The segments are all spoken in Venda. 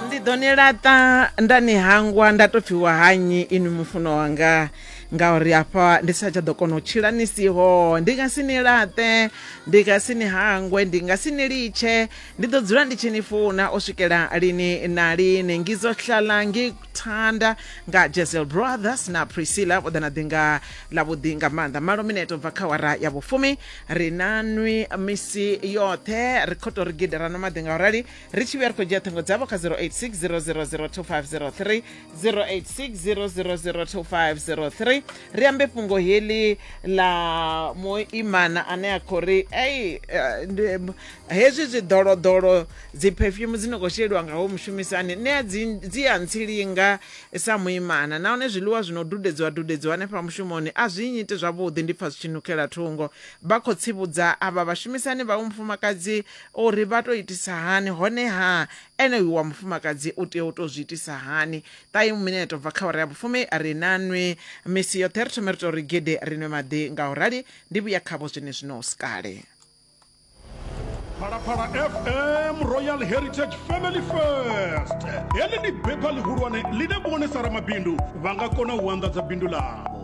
ndi ḓo ni laṱa nda ni hangwa nda tou pfhiwa hanyi inwi mufuno wanga ngauri hafha ndi sa tsha ḓo kona u tshila ni siho ndi nga si ni laṱe ndi nga si ni hangwe ndi nga si ni litshe ndi ḓo dzula ndi tshi ni funa u swikela lini na lini ngizohlala ngikuthanda nga jesel brothers na priscilla vho ḓa na ḓi nga ḽavhuḓi nga maanḓa malo mineto bva kha wara ya vhufumi ri na nwi misi yoṱhe ri khou tou ri gidera no maḓi nga u rali ri tshi vhuya ri khou dzhia ṱhingo dzavho kha 0860002503 0860002503 ri ambe fhungo heḽi ḽa muimana ane a khou ri ei eh, hezwi zwiḓoloḓolo dzi perfume dzi no khou sheliwa nga ho mushumisani nṋe dzi a ntsilinga sa muimana nahone zwiḽiwa zwi no dudedziwa dudedziwa hanefha mushumoni a zwi nyiti zwavhuḓi ndi pfha zwi tshi nukela thungo vha khou tsivhudza avha vhashumisani vha mufumakadzi Uri vha tou itisa hani, honeha ene uyu wa mufumakadzi u tea u tou zwi itisa hani? Ṱahi mineto bva kha awara ya vhufumi ri na nwi misi yoṱhe, ri thome ri tou ri gede ri nwe maḓi. Nga u rali ndi vhuya khavho zwenezwino hu si kale. Phalaphala FM Royal Heritage Family First. Heḽi ndi bepha ḽihulwane ḽine vhone sa ramabindu vha nga kona u anḓadza bindu ḽavho.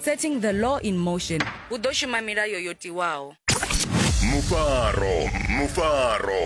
setting the law in motion hu ḓo shuma milayo yo tiwaho mufaro mufaro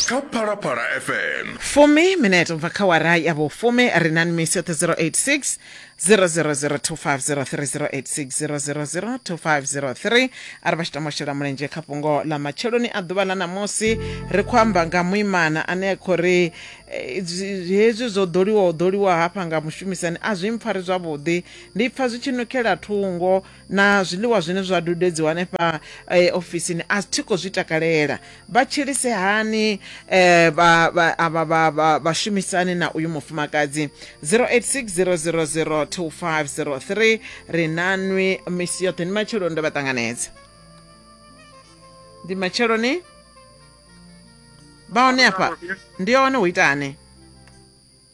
kha phalaphala fm fumi minete ubva kha wara ya vhufumi ri na nmisi yoṱhe 086 0002503 a ri vha tshi tama u shela mulenzhe kha fhungo ḽa matsheloni a ḓuvha ḽa ṋamusi ri khou amba nga muimana ane a khou ri eh, zwi- hezwi zwo ḓoliwa u ḓoliwa hafha nga mushumisani a zwi mpfari zwavhuḓi Ndi pfa zwi tshi nukela thungo na zwiḽiwa zwine zwa dudedziwa hanefha eh, ofisini a thi khou zwi takalela vha tshilise hani eh, vha- vha- avha vha- vha- vhashumisani na uyu mufumakadzi 0860002503 ri nanwi misi yoṱhe ndi matsheloni ndo vha ṱanganedza ndi matsheloni vha hone afha ndi hone hu itani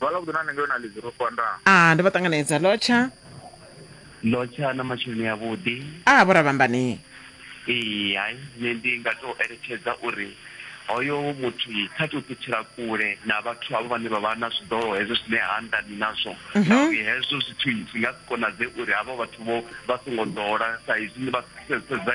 Vhala vhuḓi na nṋe ngeno na ḽidzi ro fanda. Ah ndo vha ṱanganedza lotsha. Lotsha na masheleni a vhuḓi. Ah vho Ravhambani. Ee hai nṋe ndi nga to eletshedza uri hoyo muthu kha to ṱutshela kule na vhathu havho vhane vha vha na zwiḓolo hezwo zwine ha anḓani nazwo ngauri hezwo zwithu zwi nga si konadzee uri havho vhathu vho vha songo ḓola sa izwi ni vha sedza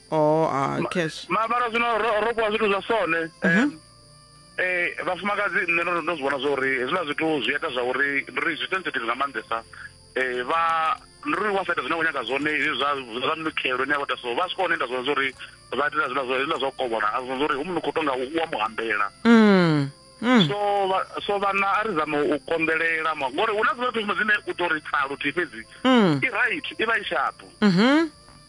oh ah, cash ma mara zwino ro ro kwa zwithu zwa sone Mhm. em, eh vhafumakadzi nṋe ndo ndo zwi vhona zwa uri hezwiḽa zwithu zwi ita zwa uri ndi ri zwi sensitive nga maanḓesa eh vha ndi ri wa sa ita zwine wa nyaga zwone hezwi zwa zwa minukelo ine ya vhota so vha swika hone ita zwone zwa uri vha itela zwiḽa zwa hezwiḽa zwa u kovhola a zwi uri hu munukho u tonga u wa mu hambela Mm. Mm. so vha- so vhana a ri zame u konḓelela ma- ngori hu na dziṅwe fhedzi dzine u ḓo ri tsa luthihi fhedzi Mm. i right i vha i shapu Mhm.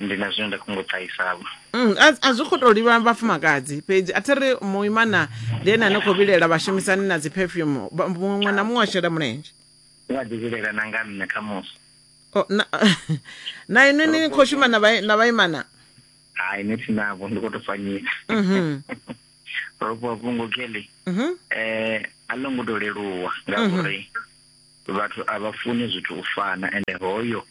ndi na zwine nda khou ngo ṱahisavho Mm, a a zwi khou tou livha vhafumakadzi fhedzi a thi ri muimana ndi ene ane khou vhilela vhashumisani na dzi perfume Vha- muṅwe na muṅwe a shela mulenzhe u a ḓivhilela na nga nṋe khamusi O, na- na inwi ni khou shuma na vha- na vhaimana hai ni thi navho ndi khou tou fanyisa Mhm, ropo vhungo kelly mhm, eh a ḽo ngo to leluwa ngauri vhathu a vha funi zwithu u fana ende hoyo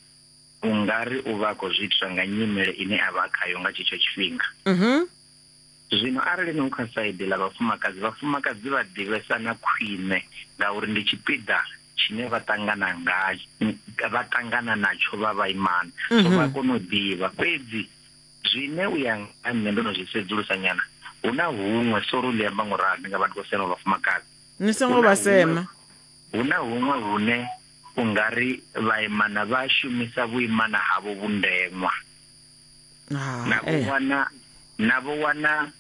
U nga ri u vha a khou zwi itiswa nga nyimele ine a vha a khayo nga tshetsho tshifhinga. Zwino arali ni u kha saidi ḽa vhafumakadzi, vhafumakadzi vha ḓivhesana khwine ngauri ndi tshipiḓa tshine vha ṱangana nga vha ṱangana natsho vha vhaimana, so vha a kona u ḓivha. Fhedzi zwine u ya nga ha nṋe ndo no zwi sedzulusa nyana, hu na huṅwe, sori u ḽi amba ngo ralo, ndi nga vha ndi khou sema vhafumakadzi. Ni songo vha sema. Hu na huṅwe hune. u nga ri vhaimana vha shumisa vhuimana havho vhundeṅwa na vho eh. wana na vho wana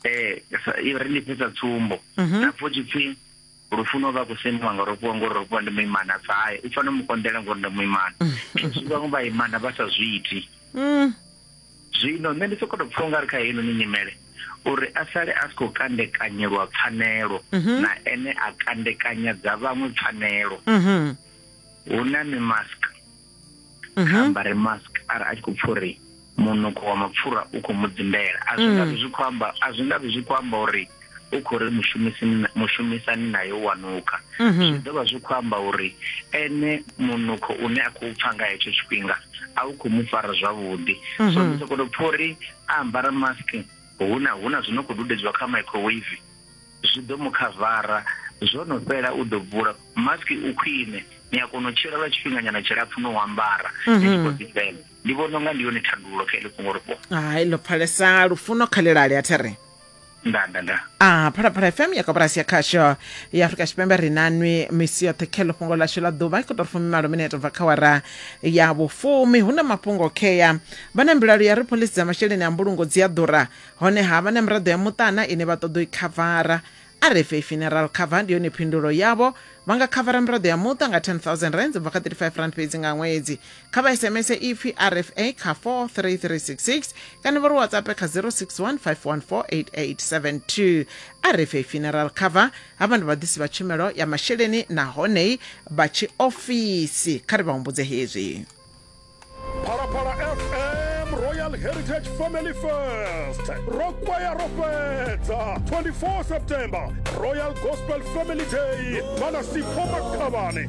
eh i ri ni fhisa tsumbo mhm. na pfo tshipfi lufuno vha kusemiwa nga rofhiwa ngori rofhiwa ndi muimana bva haye u fanela mukonḓela ngori ndi muimana mm. zwi vhaṅwe vhaimana vha sa zwi iti mm. Zwino nṋe ndi sokoto pfha ungari kha heinoni nyimele uri a sale a si khou kandekanyelwa pfanelo mhm. na ene a kandekanya dza vhaṅwe pfanelo mhm. hu na mimask mhm. kha ambare mask ara a tshi khou pfha uri munukho wa mapfura u khou mu dzimbela a zwi nga zwi khou amba a zwi nga zwi khou amba uri u khou ri mushumisani naye u a nukha mhm. zwi ḓo vha zwi khou amba uri ene munukho une a khou pfa nga hetsho tshifhinga a u khou mu fara zwavhuḓi mhm. so ndi sokoto pfa uri a ambara mask hu na hu na zwi no khou dudedziwa kha microwave zwi ḓo mu khavara zwo no fhela u ḓo bvula mask u khwine ni a kona u tshila lwa tshifhinganyana tshilapfu no u ambara ni tshi khou mhm. ḓifhela ndi vhona unga ndi yone thandululo kha ili fhungo ri fhungo hai ḽo pfalesa lufuno kha ḽilali a there nda nda nda a phalaphala fm ya koporasi ya khasho ya afurika tshipembe ri nanwi misi yoṱhe khelo fhungo ḽashu ḽa ḓuvha i khou tou fumi malo minete bva kha wara ya vhufumi hu na mafhungo khea vha na mbilaelo ya ri pholisi dza masheleni a mbulungo dzi a ḓura honeha vha na miraḓo ya muṱana ine vha ṱoḓa u i khavara a re fhe funeral cover ndi yone phindulo yavho vha nga khavara miraḓo ya muṱa nga 10000 rands bva kha 35 rand fhedzi nga ṅwedzi kha vha sms ipfi rfa kha 43366 kana vha ri whatsapp kha 0615148872 rfa funeral cover havha ndi vhaḓisi vha tshumelo ya masheleni nahone vha tshiofisi kha ri vha humbudze hezwi phalaphala fm royal heritage family fest ro kwaya ro fhedza 24 september royal gospel family day vha na sipho makhavhani